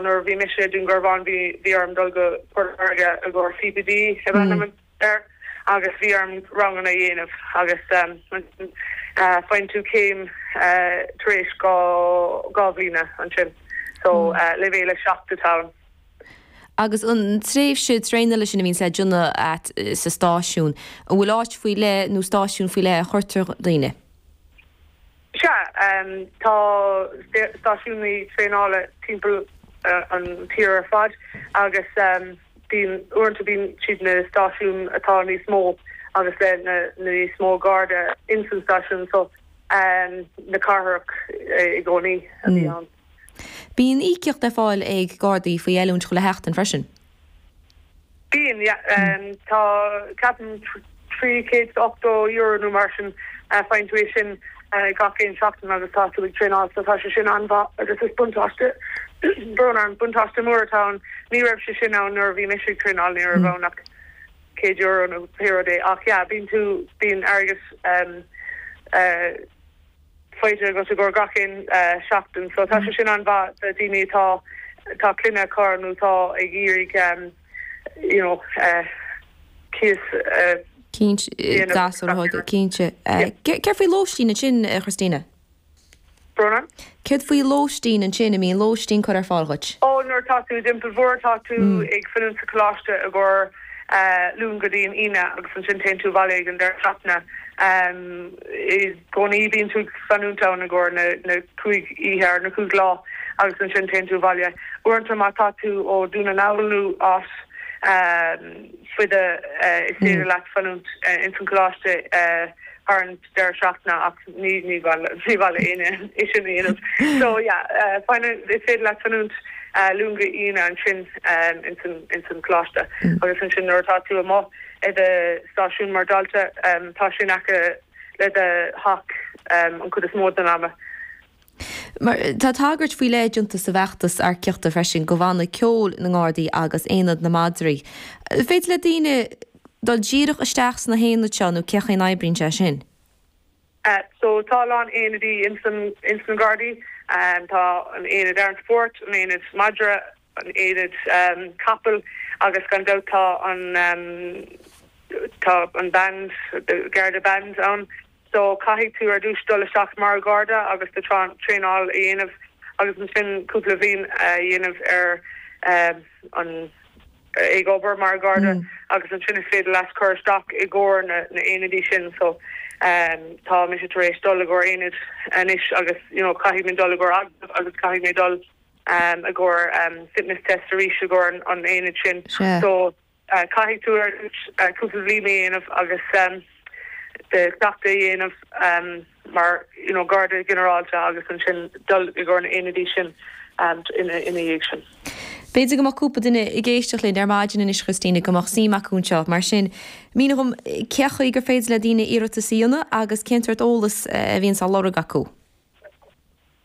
Nuair a bhí mise i nDúngarbhán bhí orm dul go Port Láirge i gcomhair CPD ab ainm air agus bhí orm ranganna a dhéanamh agus ansin faigheann tú céim tar éis dhá bhliana ansin. So leibhéal 7 atá ann. Agus an tréimhse traenála sin a bhíonns le déanamh agat sa stáisiún, an bhfuil áit faoi leith nó stáisiún faoi leith a chuirtear daoine? Sea, tá stáisiúin traenála timpeall an tír ar fad agus bíonn, uaireanta bíonn siad na stáisiúin atá níos mó agus le na níos mó Garda ins an stáisiún so na cathrach i gcónaí a bhíonn ann. Bíonn íocaíocht le fáil ag Gardaí faoi oiliúint chuile sheachtain freisin. Bíonn, yeah. Tá, ceapaim, trí chéad is ochtó euro nó mar sin faigheann tú é sin gach aon seachtain agus tá tú ag traenáil so tá sé sin an-mhaith agus is buntáiste, brón orm, buntáiste mór atá ann. Ní raibh sé sin ann nuair a bhí mise ag traenáil, ní raibh ann ach céad euro nó pé rud é ach, yeah, bíonn tú, bíonn airgead, eh, faighte agat i gcomhair gach aon seachtain. So tá sé sin an-mhaith do daoine atá tá clainne acu nó tá ag iarraidh you know cíos a dhéanamh. Cinnte. Céard faoi lóistín ansin a Christina? Bronagh? Céard faoi lóistín ansin, An mbíonn lóistín curtha ar fáil dhuit? Oh nuair atá tú i dTeampall Mhór tá tú ag fanúint sa choláiste i gcomhair Luan go dtí an Aoine agus ansin téann tú abhaile ag an deireadh seachtaine. I gcónaí bíonn tú ag fanúint ann i gcomhair na cúig oíche nó na cúig lá agus ansin téann tú abhaile. Uaireanta má tá tú ó Dún na nGall nó áit fada is féidir leat fanúint ins an choláiste thar an deireadh seachtaine ach ní mhaith le éinne é sin a dhéanamh. So yeah fanann, is féidir leat fanúint Luan go Aoine ansin ins an choláiste agus ansin nuair atá tú amuigh i do stáisiún mar dalta tá sé in aice le do theach an chuid is mó den am. Tá tagairt faoi leith déanta sa bhfeachtas earcaíochta freisin do Bhanna Ceoil na nGardaí agus Aonad na Madraí. An féidir le daoine dul díreach isteach sna haonaid seo nó cén chaoi a n-oibríonn sé sin? So tá a lán aonaidí ins an Gardaí. Tá an Aonad Air Support, an Aonad Madra, an aonad capall agus gan dabht tá an tá an band the garda band ann so caithfidh tú ar dtús dul isteach mar gharda agus do traenáil a dhéanamh agus ansin cúpla bhliain a dhéanamh ar an ag obair mar gharda agus ansin is féidir leat cur isteach i gcomhair na na aonaidí sin so tá mise tar éis dul i gcomhair aonaid anois agus you know caithfidh mé dul i gcomhair agus caithfidh mé dul um i gcomhair um fitness test arís i gcomhair an aonaid sin Sea. so uh caithfidh tú ar ais uh cúpla bhliain a dhéanamh agus um the cleachtadh a dhéanamh um mar you know Garda Ginearálta agus ansin dul i gcomhair na aonaidí sin um ina ina dhiaidh sin. B'fhéidir go mbeadh cúpla duine ag éisteacht linn ar maidin anois a Christina go mbeadh suim acu anseo mar sin mínigh dhom cé chaoi gur féidir le daoine iarratas a dhéanamh agus cén sort eolas a bhíonns dá lorg acu?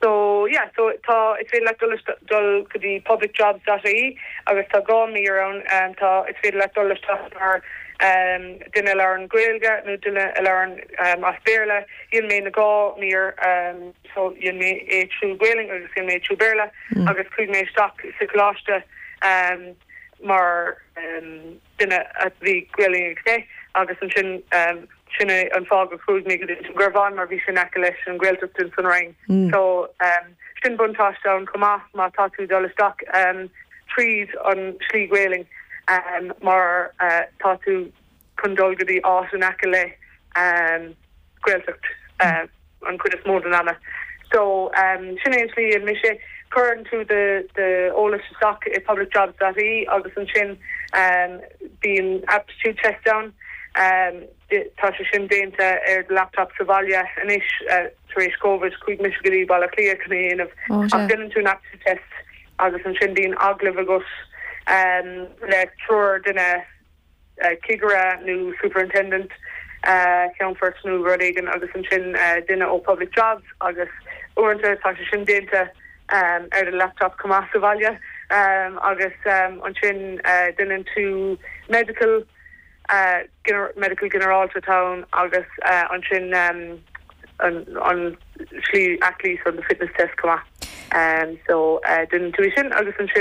So, yeah, so tá, is féidir leat dul isteach, dul go dtí publicjobs dot ie agus tá dhá mhír ann. Tá, is féidir leat dul isteach mar duine a labhrann Gaeilge nó duine a labhrann as Béarla. Dhein mé na dhá mír, so dhein mé é trí Ghaelainn agus dhein mé é trí Bhéarla agus chuaigh mé isteach sa choláiste mar. duine a bhí Gaelainn aici agus ansin sin é an fáth gur chuaigh mé go dtí Dún Garbhán mar bhí sé in aice leis an Ghaeltacht ins an Rinn so sin buntáiste ann chomh maith má tá tú ag dul isteach tríd an slí Gaelainn mar tá tú chun dul go dtí áit in aice le Gaeltacht an chuid is mó den am. So sin é an tslí a dhein mise. Cuireann tú d'eolas isteach i publicjobs dot ie agus ansin bíonn aptitude test ann. Tá sé sin déanta ar do laptop sa bhaile anois tar éis Covid. Chuaigh mise go dtí Baile Átha Cliath chun é a dhéanamh. Ach déanann tú an aptitude test agus ansin bíonn agallamh agat le triúr duine. cigire nó superintendent, ceannfort nó rud éigin agus ansin duine ó Public Jobs agus uaireanta tá sé sin déanta ar do laptop chomh maith sa bhaile agus ansin déanann tú medical, medical ginearálta atá ann agus ansin an slí aclaí so the fitness test chomh maith so déanann tú é sin agus ansin.